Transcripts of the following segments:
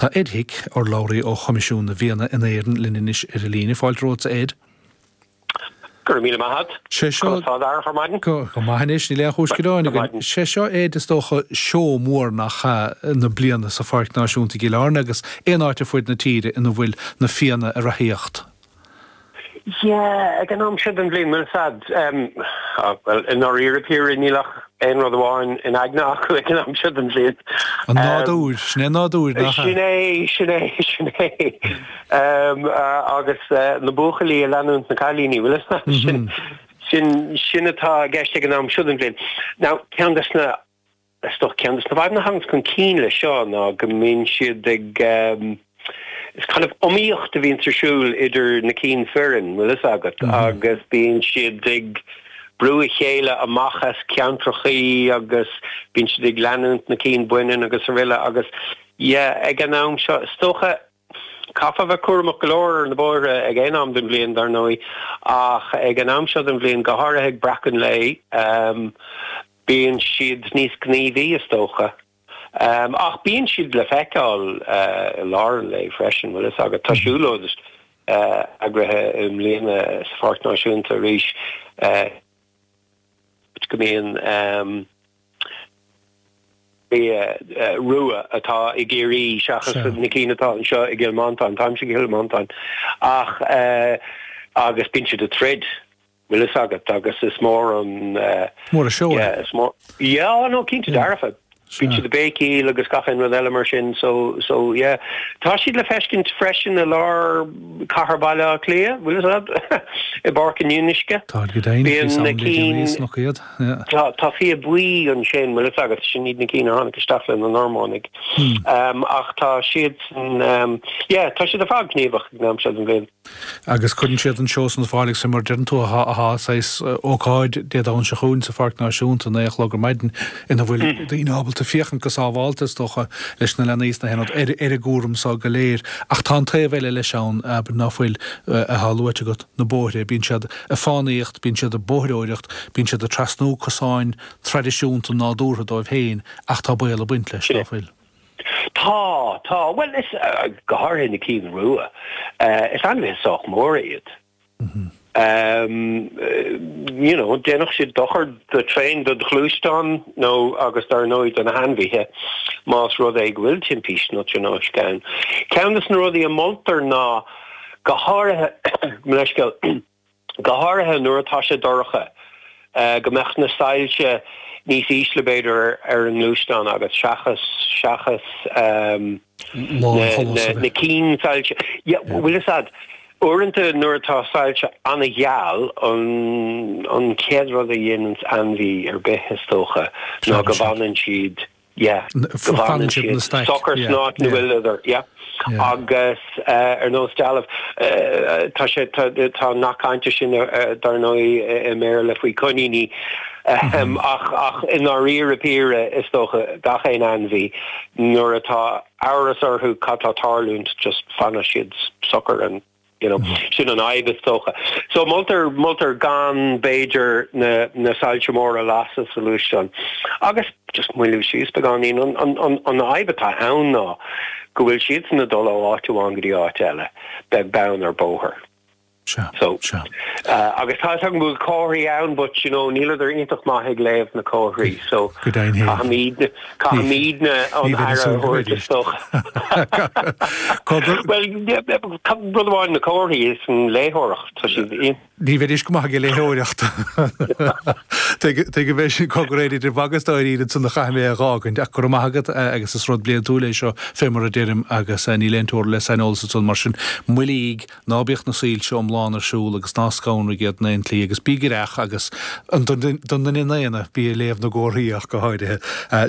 Tá Ed Hick, urlabhraí ó Choimisiún na bhFianna in Éirinn linn anois ar an líne. Fáilte romhat, a Ed. Go raibh míle maith a't. Sé seo. Conas tá d'athair chomh maith? Go go maith anois, níl aon chúis ghearáin againn. Sé seo, Ed, is dócha, seó mór nach ea, na bliana sa Pháirc Náisiúnta i gCill Airne agus aon áit ar fuaid na tíre ina bhfuil na fianna ag reathaíocht? Sea, ag an am seo den bhliain, bhfuil fhios agat. Bhuel, i ndáiríre píre, níl ach aon rud amháin in aigne acu ag an am seo den bhliain. An nádúr, sin é an nádúr, nach ea? Sin é, sin é, sin é. Agus na buachaillí ag leanúint na gcailíní, bhfuil fhios agat, sin atá i gceist ag an am seo den bhliain. Now, ceann de na. Is dócha ceann de na fadhbanna a thaganns chun cinn leis seo ná go mbíonn siad ag Is kind of iomaíocht a bhíonns ar siúl idir na cinn fireann, bhfuil fhios agat, agus bíonn siad ag brú a chéile amach as ceantrachaí agus bíonn siad ag leanúint na cinn baineann agus aroile agus, yeah, ag an am seo, is dócha. Chaithfeá bheith cúramach go leor ar na bóithre ag aon am den bhliain, dar ndóigh, ach ag an am seo den bhliain, go háirithe ag breacadh an lae, bíonn siad níos gníomhaí, is dócha. Ach bíonn siad le feiceáil i lár an lae freisin, bhfuil a fhios agat. Tá siúlóid eagraithe i mbliana sa Pháirc Náisiúnta arís. go mbíonn fia rua atá i gCiarraí seachas na cinn atá anseo i gCill Mhantáin, táimse i gCill Mhantáin ach agus bíonn siad ag troid, bhfuil 'fhios agat, agus is mór an, Mór an seó é. Yeah, is mór, yeah, á no, cinnte dearfa. Bíonn siad ag béicíl agus gach aon rud eile mar sin so, so yeah. Tá siad le feiscint freisin i lár chathair Bhaile Átha Cliath, bhfuil fhios a'd? I bPáirc an Fhionnuisce. Táid go deimhin, fios a'm, bíonn na cinn níos loctha iad, yeah. Tá, tá fia buí ansin, bhfuil fhios agat, sin iad na cinn a tháinig isteach le na Normánaigh. Ach tá siadsan, yeah, tá siad ar fad gníomhach ag an am seo den bhliain. agus cuireann siad an seó san ar fáil agus faoi mar a deireann tú, tá saghas ócáid Dé Domhnaigh seo chugainn sa Pháirc Náisiúnta, naoi a chlog ar maidin, ina bhfuil daoine ábalta féachaint go sábhálta, is dócha, leis na leanaí sna hionaid, ar an gcúram seo go léir. Ach tá an taobh eile leis ann, abair, ná fuil, atá luaite agat, na bóithre. Bíonn siad ag fánaíocht, bíonn siad ag bóithreoireacht, bíonn siad ag trasnú cosáin traidisiúnta nádúrtha dóibh féin ach tá baol ag baint leis, ná fuil? Tá, tá. Bhuel, is, go háirithe na cinn rua, is ainmhithe sách móra iad. You know, dhéanfadh siad dochar go tréan, do ghluaisteán nó, agus dar ndóigh do na hainmhithe más rud é go bhfuil timpiste nó tionóisc ann. Ceann de na rudaí a mholtar ná, go háirithe, mo leithscéal, go háirithe nuair atá sé dorcha, go mbeadh na soilse níos ísle, b'fhéidir, ar an ngluaisteán agus seachas, seachas na cinn soilse, bhuel, sea, uaireanta nuair atá soilse an-gheal, an, an chéad rud a dhéananns ainmhí ar bith, is dócha, ná go bhfanann siad. yeah, fanann siad socair san áit ina bhfuileadar, yeah, agus ar nós dealbh, tá sé, tá an nath cainte sin dar ndóigh i mBéarla faoi choiníní ach i ndáiríre píre is dócha gach aon ainmhí nuair atá amhras orthu cad tá tarlúint just fanann siad socair and Sin an fhadhb, is dócha. So, moltar, moltar gan, b'fhéidir, na, na soilse móra a lasadh sa ghluaisteán. Agus, just moilliú síos beagáinín, an, an, an, an fhadhb atá ann ná go bhfuil siadsan ag dul ó áit amháin go dtí áit eile, beag beann ar bhóthar. Sea, sea. So, uh, agus tá a fhios agam go bhfuil comharthaí ann, but, you know, níleadar iontach maith ag léamh na comharthaí, so, caithfimid, Caithfimid an aire a thabhairt isteach. Bhuel, rud amháin na comharthaí is an léitheoireacht, tá siad in. Níl mé féin ró-mhaith ag an léitheoireacht. Tuigim é sin, cogar, Ed, is ansan a chaithfidh mé a dh'fhágaint. Ach go raibh maith agat agus is rud bliantúil é seo, fé mar a deirim, agus níl aon teora le saineolas ansan. Mar sin, moillígh! Ná bíodh na soilse iomlán ar siúl agus ná scanraigh iad in aon tslí agus bí aireach agus. don duine daonna, bí ag léamh na gcomharthaí ach go háirithe.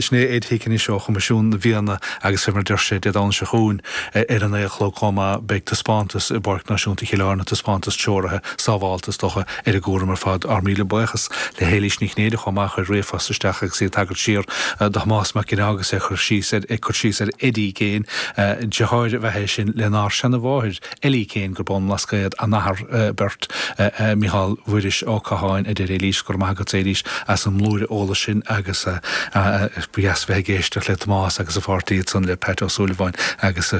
Sin é Ed Hick ansan ó Choimisiún na bhFianna agus fé mar a deir sé, Dé Domhnaigh seo chugainn ar an naoi a chlog chomh maith beidh taispeántas i bPáirc Náisiúnta Chill Airne, taispeántas treoraithe, sábháilte is dócha. Ar an gcúram ar fad, ár míle buíochas le hÉilís Ní Chinnéide chomh maith a chuir ríomhphost isteach agus í ag tagairt siar do Thomás Mac Ginneá agus é ag cur síos ar Eddie Kane, deartháir ab ea é sin lenár seana-mháthair Ellie Kane gurb ón mBlascaod a n-athar beirt, Micheál Mhuiris Ó Catháin, a deir Éilís, Go raibh maith agatsa, Éilís, as an mblúire eolais sin agus ba dheas bheith ag éisteacht le Tomás agus a pháirtí ansan le Pat Ó Súilleabháin agus a.